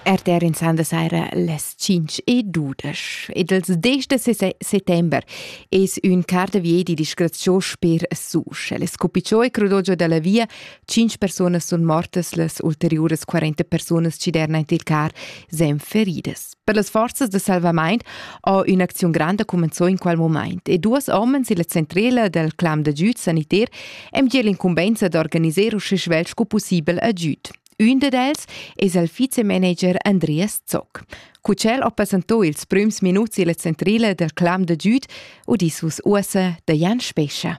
RTR in sanda saira las 5 e 12 ed ils 10 de settember es ün carta vie di disgraziò sper Susch. Les cupicciò e crudogio dalla via, 5 personas sun mortas, las ulteriuras 40 personas ci derna il car sen feridas. Per las forzas de salvamaint ha ün'acziun granda cumenzò in quel moment e duas homens illa centrela del clam d'agüd saniter hem già l'incumbenza d'organiser usche svelt sco possibel agüd. Ün ded els es il vizemanager Andreas Zock. Cu ch'el ha presentò ils prüms minuts illa centrela del clam d'agüd, udissus uossa da Jan Spescha.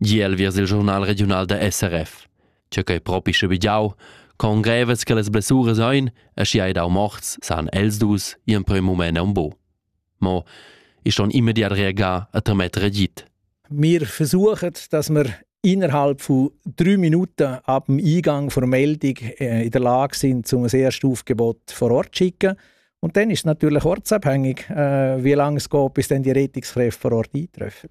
Gie el viers il giurnal regiunal da SRF. Che quei propi sche bigiau, con grevas che las blessuras ein, e schi hai dau morts, san els dus in prem mument un bo. Mo ist schon immediat reagà a trametter agit. Wir versuchen, dass wir innerhalb von drei Minuten ab dem Eingang der Meldung äh, in der Lage sind, um ein erstes Aufgebot vor Ort zu schicken. Und dann ist es natürlich ortsabhängig, äh, wie lange es geht, bis dann die Rettungskräfte vor Ort eintreffen.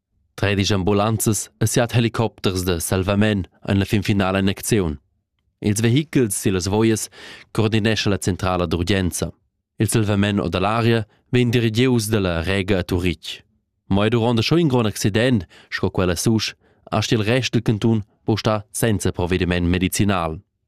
tredisch ambulanzas e siat helicopters da salvament ein la finfinala in acziun. Ils vehichels sillas voias coordinescha la centrala d'urgenza. Il salvament o dall'aria vegn dirigius dalla Rega a Turitg. Mo duront schon in grond accident, sco quella susch, ha il rest del cantun può star senza provvediment medicinal.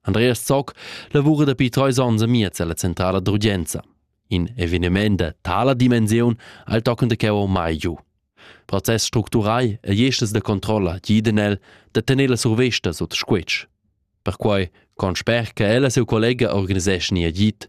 Andreas Zock lavura dapi trais onns amiez alla centrala d'urgenza. In eveniment da tala dimensiun al tochen de cheu mai giu. Process structurai e jestas da controlla giden el da tener la survesta sut squetsch. Perquai con sper che ella seu collega organiseschi agit,